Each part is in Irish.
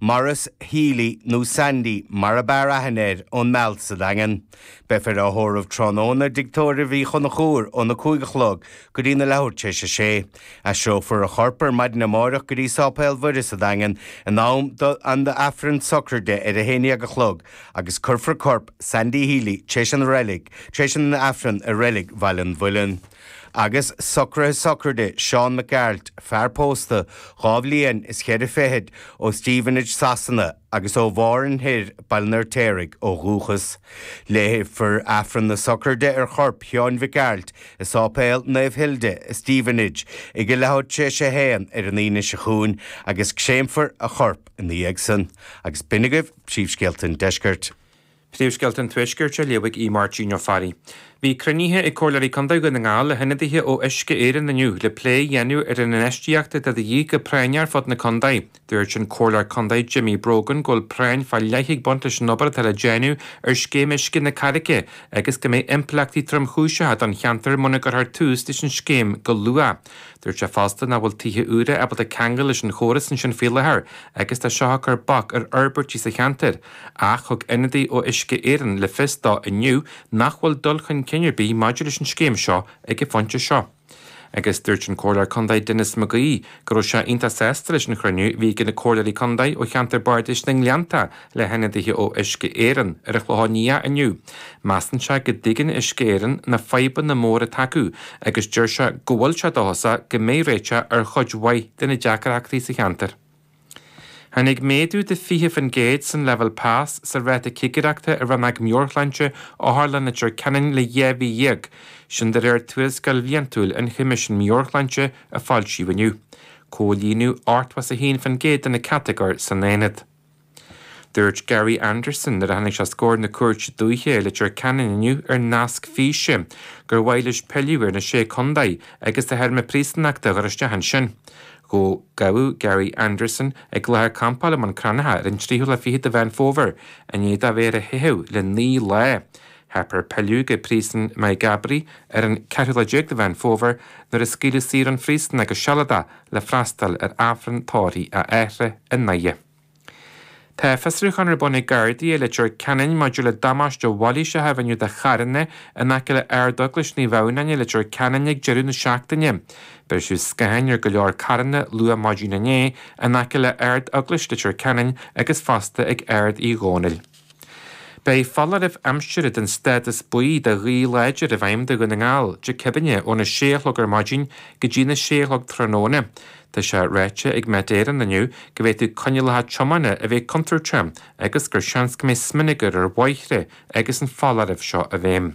Maurice Healy, nó Sandy mar ab fhearr aithne air, ón Meal sa Daingean. Beifear á thórramh tráthnóna i dtigh tórraimh Uí Chonchúir óna cúig a chlog go dtí na leathuair tréis a sé. Aistreofar a chorp ar maidin amáireach go dtí Sáipéal Mhuire sa Daingean in am don Aifreann sochraide ar a haon déag a chlog agus cuirfear corp Sandy Healy tréis an reilig tréis an Aifreann i Reilig Bhaile an Mhuilinn. Agus socruithe sochraide Seán Mac Gearailt, fear pósta, dhá bhliain is cheithre fichid, ó Stevenage, Sasana, agus ó Mhárthain Thoir, Baile an Fheirtéaraigh, ó dhúchas. Léifear Aifreann na sochraide ar chorp Sheáin Mhic Gearailt i Sáipéal Naomh Hilda i Stevenage ag a leathuair tréis a haon ar an Aoine seo chugainn agus créamfar a chorp ina dhiaidh san. Agus b'in agaibh príomhscéalta an Deiscirt. Príomhscéalta an Tuaiscirt a léifidh Aodh Máirtín Ó Fearraigh. Bhí cruinnithe ag Comhairleoirí Contae Dhún na nGall le hionadaithe ó Uisce Éireann inniu le plé a dhéanamh ar an infheistíocht atá de dhíth go práinneach ar fud na contae. Dúirt an Comhairleoir Contae Jimmy Brogan go bhfuil práinn fá leith ag baint leis an obair atá le déanamh ar scéim uisce na Carraice agus go mbeidh impleachtaí tromchúiseacha don cheantar muna gcuirthear tús leis an scéim go luath. Dúirt sé fosta nach bhfuil tithe úra ábalta ceangal leis an chóras ansin faoi láthair agus tá seo ag cur bac ar fhorbairtí sa cheantar. Ach thug ionadaí ó Uisce Éireann le fios dó inniu nach bhfuil dul chun cinn ar bith maidir leis an scéim seo ag an phointe seo. Agus dúirt an Comhairleoir Contae Denis McGee go raibh sé iontach sásta leis an chruinniú a bhí ag na Comhairleoirí Contae ó cheantar Bardais na nGleannta le hionadaithe ó Uisce Éireann ar an Chlochán Liath inniu. Measann sé go dtuigeann Uisce Éireann na fadhbanna móra atá acu agus deir sé go bhfuil sé dóchasach go mbeidh réiteach ar chuid mhaith de na deacarachtaí sa cheantar. Tháinig méadú de 20% san leibhéal pas sa ráta cigireachta i rannóg meabhairshláinte Otharlann Leitir Ceanainn le dhá mhí dhéag, sin de réir tuarascáil bhliantúil an Choimisiúin Meabhairshláinte a foilsíodh inniu. Comhlíonadh 81% de na catagóir san aonad. Dúirt Gary Anderson nuair a tháinig sé os comhair na cúirte dúiche i Leitir Ceanainn inniu ar nasc físe gur mhaith leis pilleadh ar na sé contae agus a théarma príosúnachta a chur isteach ansin. go gabhadh Gary Anderson ag láthair campála i mBun Cranncha ar an 23ú de Mheán Fómhair, i ndiaidh dó bheith ar a theitheadh le naoi lá. Theip air pilleadh go Príosún Maigh gCabraí ar an 14 lá de Mheán Fómhair, nuair a scaoileadh saor ón phríosún é go sealadach le freastal ar Aifreann tórraimh a athara i nDoire. Tá fiosrúchán ar bun ag Gardaí i Leitir Ceanainn maidir le damáiste mhailíseach a rinneadh do charranna in aice le Ard-Eaglais Naomh Adhamhnáin i Leitir Ceanainn ag deireadh na seachtaine. Briseadh scatháin ar go leor carranna luath maidin inné in aice le Ard-Eaglais Leitir Ceanainn agus fosta ag Ard Uí Dhónaill. Beidh foláireamh aimsire den stádas buí do ghaoth láidir i bhfeidhm do Dhún na nGall, Dé Céadaine, óna sé a chlog ar maidin go dtína sé a chlog tráthnóna. Tá sé ráite ag Met Éireann inniu go bhféadfadh coinníollacha tiomána a bheith contúirteach agus gur seans go mbeidh smionagar ar bhóithre agus an foláireamh seo i bhfeidhm.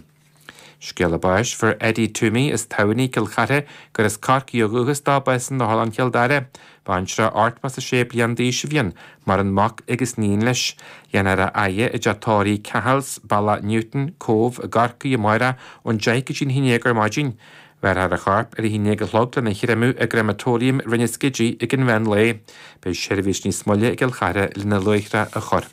Scéala báis fuair Eddie Twomey as Tamhnaigh Cill Chartha gur as Corcaigh ó dhúchas dó bás in Otharlann Chill Dara. Baintreach ochtó is a sé bliain d'aois a bhí ann. Maireann mac agus iníon leis. Déanfar a fhaire i dteach tórraimh Cahill's, Bealach Newtown, Cóbh, i gCorcaigh amárach ón deich go dtí'n haon dhéag ar maidin. Bhéarfar a chorp ar a haon dhéag a chlog lena chréamadh i gCréamatóiriam Rinn an Scidígh ag an mheán lae. Beidh seirbhís níos moille i gCill Chartha lena luaithreadh a chur.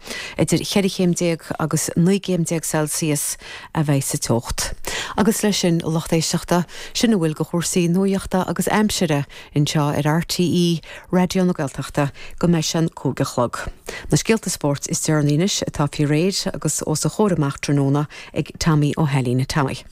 Idir cheithre chéim déag agus naoi gcéim déag Celsius a bheidh sa teocht. Agus leis sin, a lucht éisteachta, sin a bhfuil de chúrsaí nuaíochta agus aimsire anseo ar RTÉ Raidió na Gaeltachta go mbeidh sé an cúig a chlog. Na scéalta spóirt is deireanaí anois atá faoi réir agus os a chomhair amach tráthnóna ag Tommy Ó hAilín. Tommy.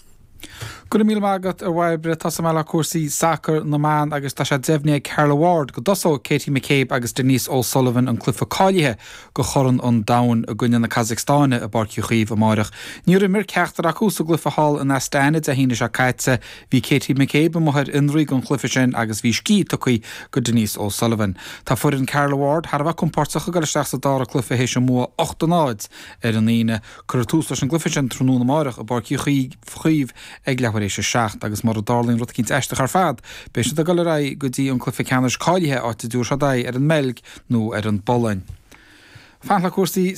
Go raibh míle maith agat, a Bhairbre. Tosóidh muid le cúrsaí sacair na mban agus tá sé deimhnithe ag Carla Ward go dtosóidh Katie McCabe agus Denise O'Sullivan, an cluiche cáilithe do Chorn an Domhain, i gcoinne na Casacstáine i bPáirc Uí Chaoimh amáireach. Níor imir ceachtar acu sa gcluiche thall in Astana Dé hAoine seo caite. Bhí Katie McCabe amuigh ar fhionraí don chluiche sin agus bhí scíth tugtha do Denise O'Sullivan. Tá foireann Carla Ward thar a bheith compordach ag dul isteach sa dara cluiche théis a mbua ocht a náid ar an Aoine. Cuirfear tús leis an gcluiche sin tráthnóna amárach i bPáirc Uí Chaoimh ag leathuair éis a seacht agus, mura dtarlaíonn rud éicint aisteach ar fad, beidh siad ag dul ar aghaidh go dtí an cluiche ceannais cáilithe, áit a dtabharfaidh siad aghaidh ar an mBeilg nó ar an bPolainn. Fanacht le cúrsaí.